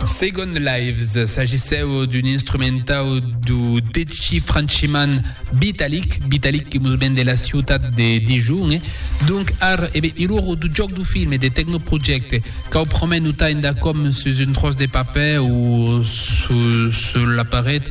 Second Lives s'agissèu d'un instrumentau do deci franchiman Vitalik, Vitalik que mos ven de la ciutat de Dijon. Donc ar, e ben, iloro do jòc do film e de Technoproject, cau promèt notar endacòm sus un tròç de papèr o sus la paret,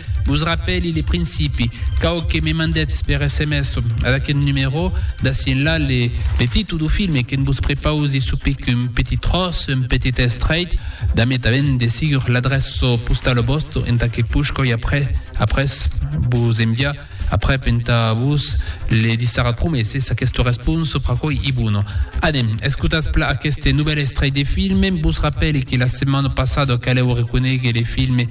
Vos rapèli le principi, cau que me mandètz per sms ad aqueth numerò, d'ací enlà, le, le títol dau filme que'n vos prepausi sou pic un petit tròç, un petit estrèit, damb tanben de sigur l'adrèça postau lo vòste, entà que push coi après, après, vos enviar, aprèp entà vos le dissara prumèr s'es aquesta responsa fra coi i bona. Anem, escotatz pla aqueste novèl estrèit de filme, vos rapèli que la setmana passada calèu reconéguer le filme,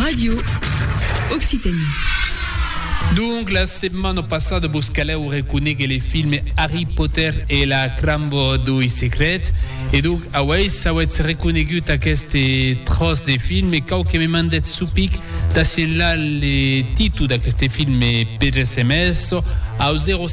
Radio Occitanie. Donc, la setmana passada vos calèu reconéguer le filme Harry Potter e la Crambo doi Secrets. E donc, auèi s'auètz reconégut aqueste tròç de filme, cau que me mandètz su pic d'assienlar le titu d'aqueste filme per sms au 0.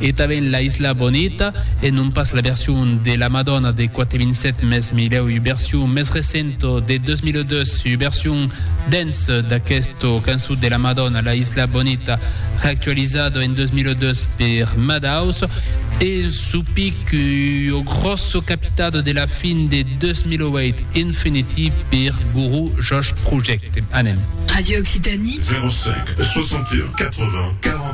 E tanben La Isla Bonita, e non pas la version de la Madonna de 4007 mes milhèu ua version mes recenta de 2002, ua version dance d'aquesta cançon de la Madonna La Isla Bonita reactualizada en 2002 per Madhouse e un supic ua gròssa capitada de la fin de 2008 Infinity per Guru Josh Project. Anem. Radio Occitanie. 05 61 80 40